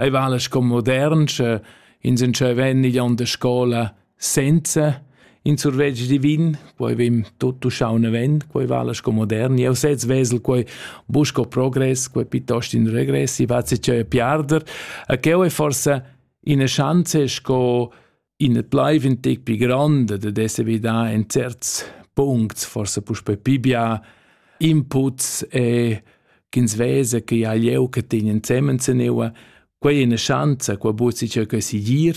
ei vala sco modern, sche ins entscheven igl onn de scola senza in survetsch divin, poi vim tutto schaune ven, quei vala sco modern. Eu sez vesel quei busco progress, quei piuttost in regressi, va si cheu piarder. A cheu è forse ina chance sco In et blaiv in tec pli grande de esser vidà in certs puncts, forse puspe pibia, inputs e ch'ins vesa che ha lieu che tegnen zemen zeneua, quei è una chance, qua buat si ciò che si gir,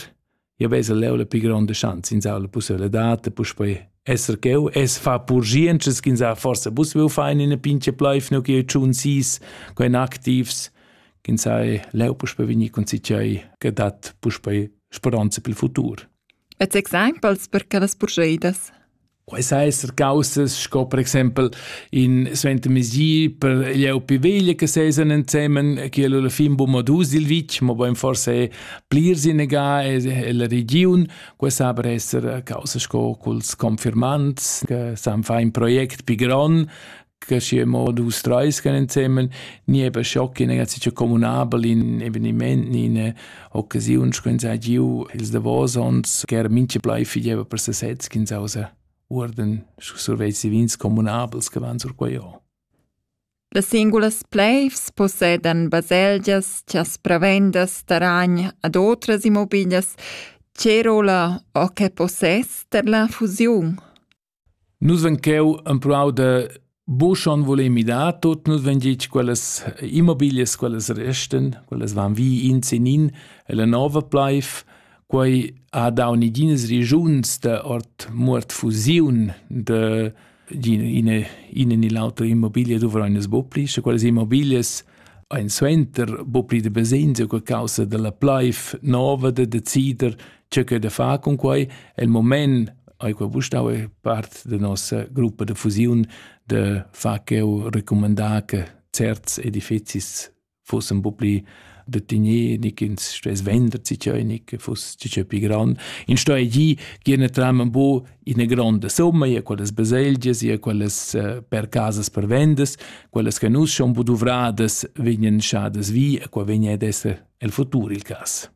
io vesa leu la pli grande chance, ins ha la possibilità, puspe esser cheu, es fa purgiences ch'ins ha forse pussibil fein in a pinche pleif, no che tschun sis, quein activs, ch'ins ha leu puspe vegnir con si cioi, che dat puspe speranza pel futur. E exempels per quellas purscheidas? Quais esser causas sco per exempel in Svente Mesi per gli upi veglia che sesan insemen che la fin bu modus il vitg ma bein forse plir sinega e la region questa aber esser causa sco culs confirmants che san fa in project pi gron che schi mo dus treis gan insemmen ni eben schocki ne ganz communabel in eveniment ni in occasiun schön sei giu ils davosons ger minche blei fideva per sesez kin sausa urden sur vezi vins communabels che van sur quei Las singulas pleivs possedan baselgias chas prevendas taragn ad otras immobilias, tgè rolla o che possess ter la fusiun? Nus vein cheu empruau da buca schon vuler midar tut. Nus vein gitg quellas immobilias, quellas restan, quellas van vi in sin in e la nova pleiv. Quei ha dau neginas regiuns da ord muort fusiun da ina ina ni l'autra immobiglia duvrein nus buca pli, sche quellas immobilias ein suenter buca pli da basegns u causa dalla pleiv nova da decider tgei che da far cun quei. El moment ei quei bustau e part da nossa gruppa de fusiun de far cheu recomandar che certs edifizis fossen po pli de tignir, nicht ins stes vender zicheu, nicht fuss zicheu pi grand. In sto e gi giene tram bo in eine grande somma, ja quelles baselgias, ja quelles uh, per casas per vendes, quelles che nus schon po duvradas vegnen schadas vi, e qua vegna ad esser el futur il cas.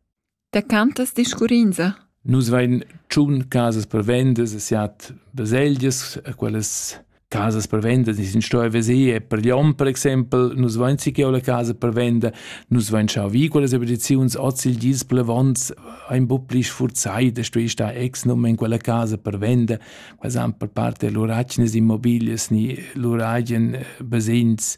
Da cantas discurrinza? Nus vein tschun casas per vendas e siat baselgias, quellas casas per vendas ni sin stoi veser per Lyon per exempel, nus vein si che la casa per venda, nus vein schau vi quellas abitaziuns oz il gis plevons ein bu pli sfurzai da stoi star ex num in quella casa per venda, quels han per parte lur accias immobilias ni lur agen basegns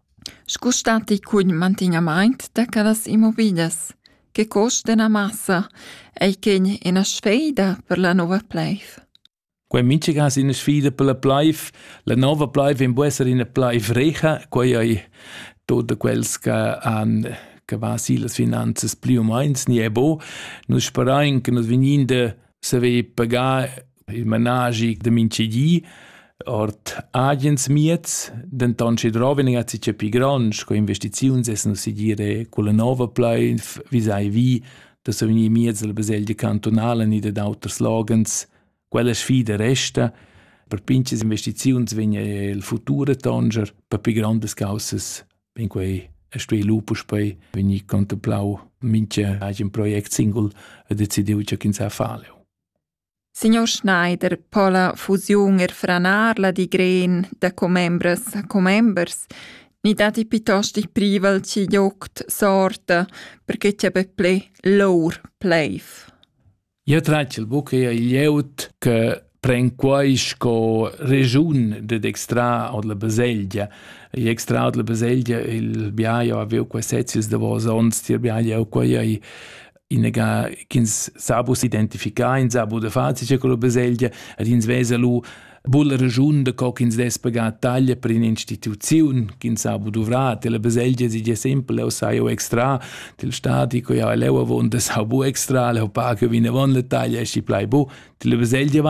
Scu statti cugl mantignamaint da quellas immobiglias? Che cost d'üna massa ei quegn üna sfeida per la nouva pleiv? Quei mintgaga ina sfida per la pleiv. La nova pleiv vegn bu esser ina pleiv recha. Quei ei tot da quels che han che va si las finanzas plü u meins ni e bo. Nus sperain che nus vegnin da saver pagar il managi da mintgedi ord agens mieds, denton sche droven a si pi grond, sco investiziuns essen si dire culla nova pleif, vi sai vi, da so vegnir miez dalla baselgia cantonala ni da d'auters logens, quella sfida resta, per pinches investiziuns vegna il futur tonger, per pi grandes causas vegn quei e stuei lupus poi vegni contemplau minche agen project singul e decidiu che ins ha faleu. Signor Schneider po la fusiun er franar la digren da commembras a commembers, ni datti piuttost il privel ch'il joct sorta perche ch'ia be ple lour pleiv? Jeu tratgel buca eir il jout che pren quai sco regiun ded extrar ord la baselgia. I extrar ord la baselgia il biaio aviu quei sezius davos onns, tier biaio aviu quei ei inega ch'ins sa bus identificar in sa bu de fazi c'è quello baselgia ed ins vesa lu bulla regiun de co ch'ins dess pagar taglia per un'instituzione ch'ins ha bu dovrà la baselgia si già sempre o sai o extra del stati co ja leu avon das ha bu extra le pa che vine von le taglia e si plai bu la baselgia vai